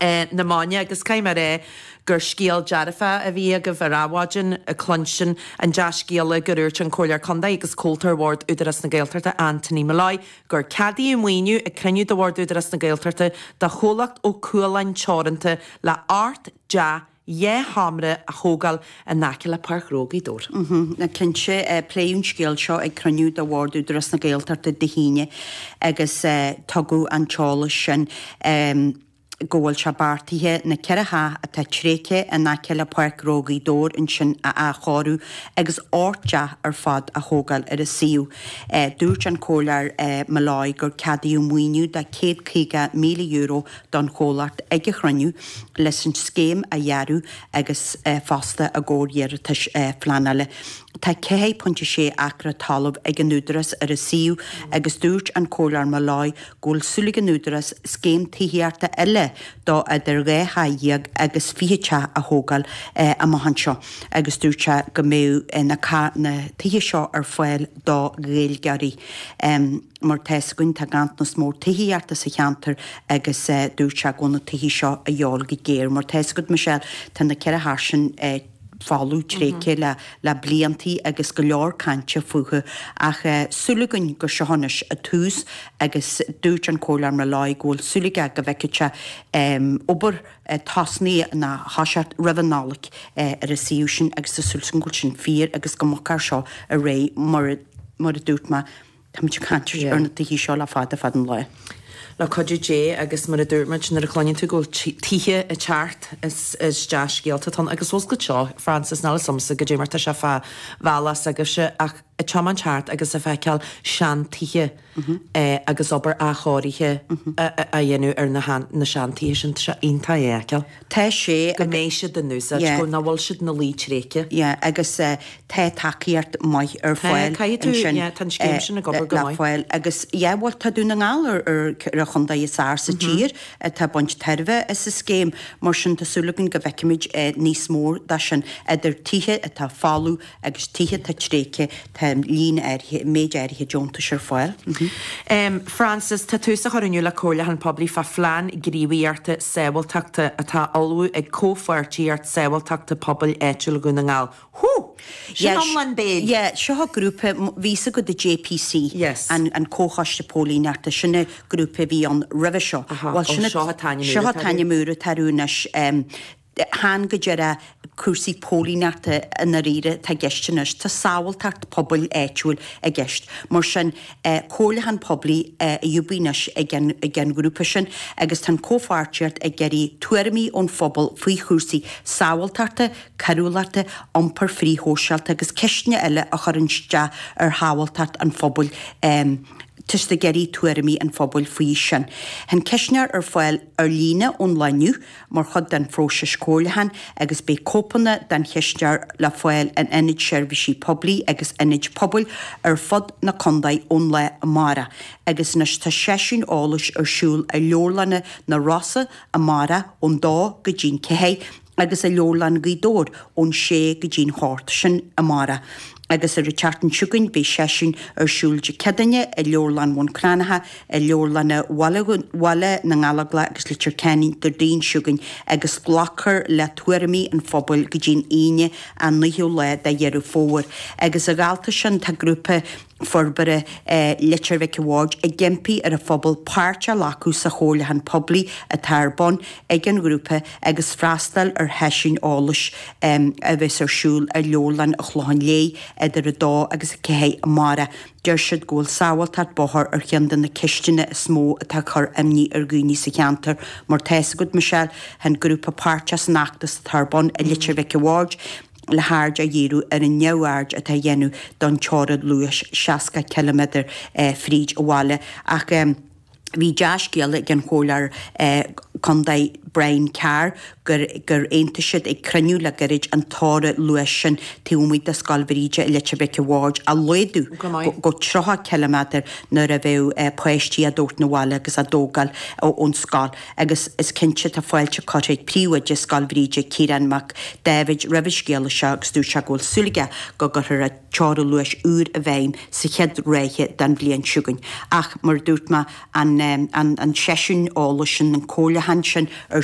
na maidne, agus caithfidh mé a rá gur scéal dearfach a bhí agaibh ar Adhmhaidin, cluinstin an dea-scéala gur úirt an Comhairleoir Contae agus Comhalta Bhord Údarás na Gaeltachta Anthony Molloy gur ceadaíodh maoiniú ag cruinniú de Bhord Údarás na Gaeltachta do chomhlacht Ó Cualáin Teoranta le ocht dteach dhá sheomra a thógáil in aice le Páirc Ghnó Ghaoth Dobhair. Á cinnte, pléadh an scéal seo ag cruinniú de bhord Údarás na Gaeltachta Dé hAoine agus tugadh an t-eolas sin go bhfuil sé beartaithe na ceithre theach atá tréigthe in aice le Páirc Ghnó Ghaoth Dobhair ansin a athchóiriú agus ocht dteach ar fad a thógáil ar an suíomh. Dúirt an Comhairleoir Molloy gur ceadaíodh maoiniú de €150,000 don chomhlacht ag an chruinniú leis an scéim a dhearadh agus fosta i gcomhair iarratais phleanála. Tá 4.6 acra talamh ag an Údarás ar an suíomh agus dúirt an Comhairleoir Molloy go bhfuil súil ag an Údarás scéim tithíochta eile de idir dhá theach dhéag agus fiche teach a thógáil amach anseo agus dúirt sé go mbeadh na tithe seo ar fáil do Ghaeilgeoirí. Mar tá 'fhios againn, tá ganntanas mór tithíochta sa cheantar agus dúirt sé go bhfuil na tithe seo a dhíobháil go géar. Mar tá 'fhios agat Michelle, tá na ceithre theach sin folamh tréigthe le bliantaí agus go leor cainte fúthu. Ach súil againn gur seo anois an tús agus dúirt an Comhairleoir Molloy go bhfuil súil aige go bhfeicfidh sé obair tosnaithe nó ag toiseacht roimh an Nollaig ar an suíomh sin agus tá súil agam go bhfuil sin fíor agus go mbogfar seo ar aghaidh mar a dúirt mé. Táimid ag caint ar na tithe seo le fada fada an lá. Le cuidiú Dé, agus mar a dúirt muid, nuair a chluineann tú go bhfuil tithe ag teacht, is dea-scéalta atá ann. Agus oscailt seo, Frances, níl 'fhios agamsa goidé mar tá sé fán bhealach s'agaibhse, ach ag tiomáint thart agus ag feiceáil seantithe agus obair athchóirithe á dhéanamh ar na seantithe sin, tá sé iontach é a fheiceáil. Tá sé, agus. Go mbeidh siad in úsáid. Go bhfuil siad ina luí tréigthe. Agus tá tacaíocht maith ar fáil ansin. Tá, caithfidh tú, yeah, tá an scéim sin ag obair go maith. Le fáil, agus, yeah, bhuel, tá Dún na nGall ar an chontae is fearr sa tír atá ag baint tairbhe as an scéim, mar sin tá súil againn go bhfeicfimid níos mó de sin, idir tithe atá folamh, agus tithe atá tréigthe, tá líon áirithe, méid áirithe deontais ar fáil. Frances, Tá tús á chur inniu le comhairliúchán poiblí fá phlean gníomhaíochta sábháilteachta atá á ullmhú ag Comhpháirtíocht Sábháilteachta Pobail Áitiúil Dhún na nGall. Hú! Sin lán béil! Yeah, seo an grúpa, bhfuil 'fhios agat an JPC, an Comhchoiste Póilíneachta, sin an grúpa a bhí ann roimhe seo. Bhuel, seo an t-ainm úr atá orthu anois. chan go díreach cúrsaí póilíneachta i ndáiríre atá i gceist anois. Tá sábháilteacht pobail áitiúil i gceist. Mar sin, comhairliúchán poiblí ar bun anois ag an, ag an ghrúpa sin, agus tá an comhpháirtíocht ag iarraidh tuairimí ón phobal faoi chúrsaí sábháilteachta, coiriúlachta, iompair frithshóisialta agus ceisteanna eile ag cur isteach ar shábháilteacht an phobail, tá siad ag iarraidh tuairimí an phobail faoi sin. Tá an ceistneoir ar fáil ar líne ón lá inniu. mar chuid den phróiseas comhairliúcháin agus beidh cóipeanna den cheistneoir le fáil in Ionaid Seirbhísí Poiblí agus ionaid pobail ar fud na condae ón lá amárach agus anois tá seisiún eolais ar siúl i Leabharlann na Rosann amárach ón 2 go dtí'n 4 agus i Leabharlann Ghaoth Dobhair ón 6 go dtí'n 8 sin amárach agus ar an tseachtain seo chugainn beidh seisiún ar siúl Dé Céadaoine i Leabharlann Bhun Cranncha i leabharlanna Bhaile na nGallóglach agus Leitir Ceanainn Déardaoin seo chugainn agus glacfar le tuairimí an phobail go dtí an Aoine an 9ú lá de Dheireadh Fómhair. Agus a dhalta sin tá grúpa forbartha Leitir Mhic a' Bhaird ag impí ar an phobal páirt a ghlacadh sa chomhairliúchán poiblí atá ar bun ag an ghrúpa agus freastal ar sheisiúin eolais a bheas ar siúl i Leabharlann an Chlocháin Léith idir 2 agus 4 amárach. Deir siad go bhfuil sábháilteacht bóthair ar cheann de na ceisteanna is mó atá ag cur imní ar dhaoine sa cheantar. Mar tá fhios agat, Michelle, tá an grúpa páirteach san fheachtas atá ar bun i Leitir Mhic a' Bhaird le haird a dhíriú ar an neamhaird atá á dhéanamh don teorainn luais 60 ciliméadar fríd an bhaile. Ach. Bhí dea-scéala ag an chomhairleoir contae Brian Carr gur aontaigh siad ag cruinniú le gairid an teorainn luais sin taobh amuigh de Scoil Bhríde i Leitir Mhic a' Bhaird a laghdú go 30 ciliméadar nuair a bheadh páistí á dtabhairt 'na bhaile agus á dtógáil ón scoil agus is cinnte tá fáilte curtha ag príomhoide Scoil Bhríde Ciarán Mac Dáibhéid roimh an scéala seo agus dúirt sé go bhfuil súil aige go gcuirfear teorainn luais úr i bhfeidhm sa chéad ráithe den bhliain seo chugainn. Ach, mar a dúirt mé, an seisiún eolais sin, an comhairliúchán sin ar